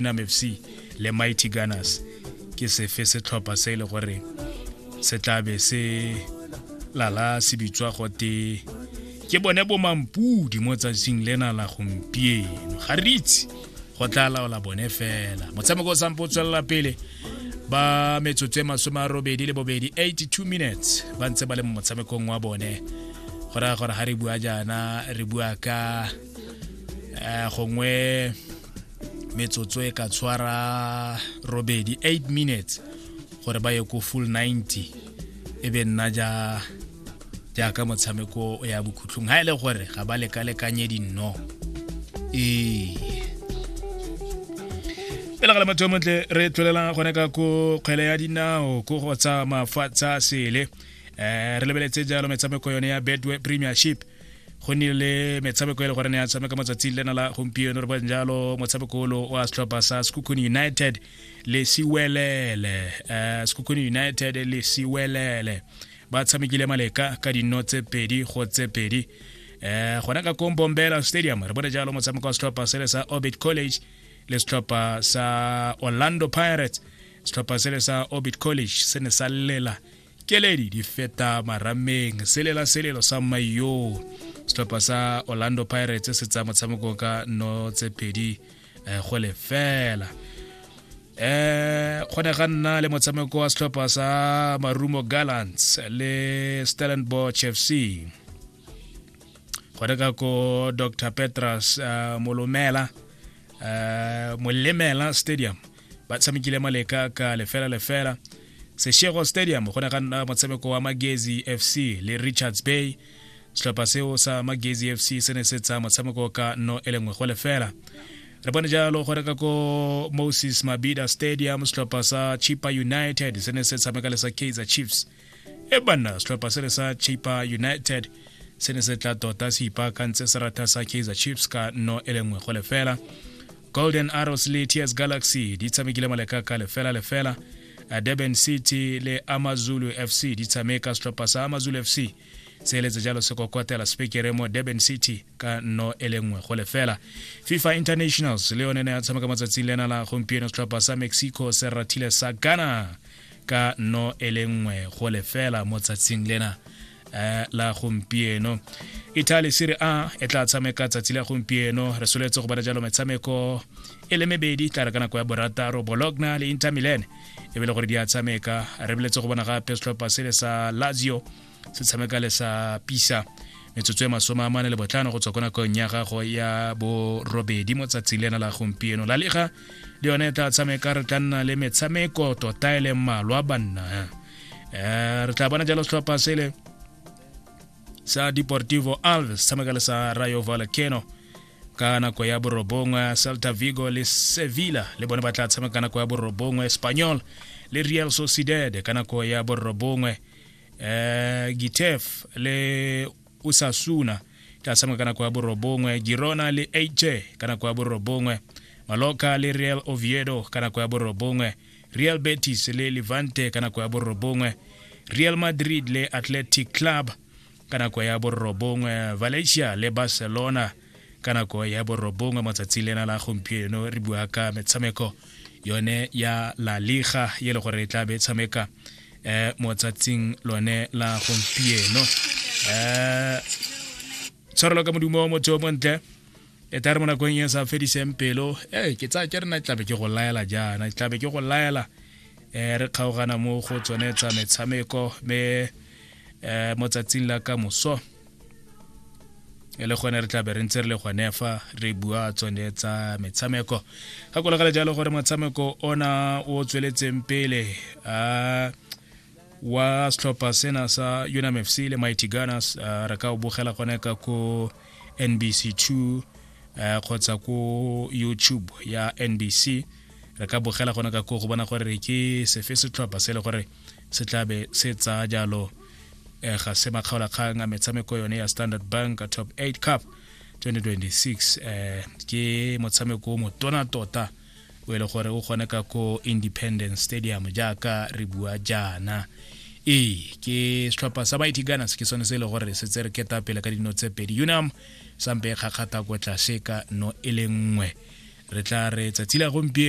Nam FC le Mighty Gunners ke sefe setlhopha se e le gore se tlabe se lala se bitswa gote ke bone bomampudi mo tsatsing lena la gompieno ga re itse go tla laola bone fela motshameko o sampo o tswelela pele ba metsotso e masome a robedi le bobedi 82 minutes ba ntse ba le mo motshamekong wa bone go raya gore ga re bua jaana re bua ka eh, gongwe metsotso e ka tshwara robedi 8 minutes gore ba ye ko full 90 e be nna ja jaaka motshameko ya bokhutlhong ga e le gore ga ba lekalekanye dinno ee pele ga le motho montle re tlwelelang gone ka ko kgwele ya dinao ko go tsa mafatsha sele um re lebeletse jalo metshameko yone ya bedway premiership go nnile le metshameko e le gore ne ya tshameka matsatsing lena la gompieno re bong jalo motshameko olo wa setlhopha sa sekukuni united le siwelele um eh, sekukuni united le siwelele ba tshamekile maleka ka dinno tse pedi go tse pedi um gona ka kombombela stadium re bone jalo motshameko wa setlhopha sele sa orbit college le setlhopha sa orlando pirates setlhopha sele sa orbit college se ne sa llela keledi di feta marameng selela selelo sa mmaio setlhopha sa orlando pirates se tsaya motshameko ka no tse pedi eh, go lefela eh go ne ga nna le motshameko wa setlhopha sa marumo gallants le stellenbosch fc go ne ka ko dr petras uh, molomela uh, molemela stadium ba tshamekile maleka ka lefela lefela seshego stadium go ne ga nna motshameko wa magezi fc le richards bay setlhopha seo sa magezi fc se ne se tsa motshameko ka no e lengwe go lefela re bone jalo gore ka ko moses mabida stadium setlhopha sa chipa united se ne se tshameka le sa kaizer chiefs e banna setlhopha se re sa chipa united se ne se tla tota se ipaakantse serata sa kaizer chiefs ka no e lengwe go lefela golden arrows le ts galaxy di tshamekile maleka ka lefela lefela durban city le amazulu fc di tshameka setlhopha sa amazulu fc se eletse jalo se kokwatela sepekere mo durban city ka no e le nngwe go lefela fifa internationals le yone ne ya tshameka matsatsing lena la gompieno setlhopha sa mexico se rathile sa ghana ka no e le nngwe go lefela mo tsatsing lena eh, la gompieno italy serie a e tla tshameka tsatsi la gompieno re soletse go bana jalo metshameko e le mebedi tla re ka nako ya borataro bologna le inter milan e be le gore di a tshameka re boletse go bona gape setlhopha sele sa lazio se tshameka le sa pisa metsotso e masome a mane le botlhano go tswa ko nakong ya gago ya borobedi mo tsatsi lena la gompieno la lega le yone e tla tshameka re tla nna le metshameko tota e leng malwa banna um re tla bona jalo setlhopha sele sa deportivo alves tshameka le sa rayo valcano ka nako ya borobongwe celta vigo le sevilla le bone ba tla tshameka ka nako ya borobongwe espanyol le real sociedad ka nako ya borobongwe eh Gitef le Osasuna tla tshameka ka nako ya borobongwe Girona le AJ ka nako ya borobongwe Mallorca le Real Oviedo ka nako ya borobongwe Real Betis le Levante ka nako ya borobongwe Real Madrid le Athletic Club ka nako ya borobongwe Valencia le Barcelona ka nako ya borobongwe mo tsatsi lena la gompieno re bua ka metshameko yone ya la liga e le gore e tla be tshameka um mo tsatsing lone la gompieno um tshwarelo ka modumo motho o montle e tare mo nakong e sa fediseng pelo e ke tsaya ke rena tlabe ke go laela jaana tlabe ke go laela um re kgaogana mo go tsone tsa metshameko me um mo tsatsing la ka moso e le gone re tla be re ntse re le gone fa re bua tsone tsa metshameko ga kolagala jalo gore motshameko ona o tsweletseng pele a wa setlhopha sena sa unam f c le mighty gunners uh, re ka o bogela gone ka ko nbc 2 uh, kgotsa ko youtube ya nbc re ka bogela gone ka ko go bona gore ke sefe setlhopha se e le gore se tlabe se tsaya jalo eh, ga se makgaolakgang a metshameko yone ya standard bank top 8 cup 2026 eh, ke motshameko o motona tota o e le gore o kgone ka ko independence stadium jaaka re bua jaana ee ke setlhopha sa mighty gunners ke sone se e le gore se tse re keta pele ka dino tse pedi unam sampe e kgakgata ko tlase ka no e le nngwe re tla re tsatsi la gompieno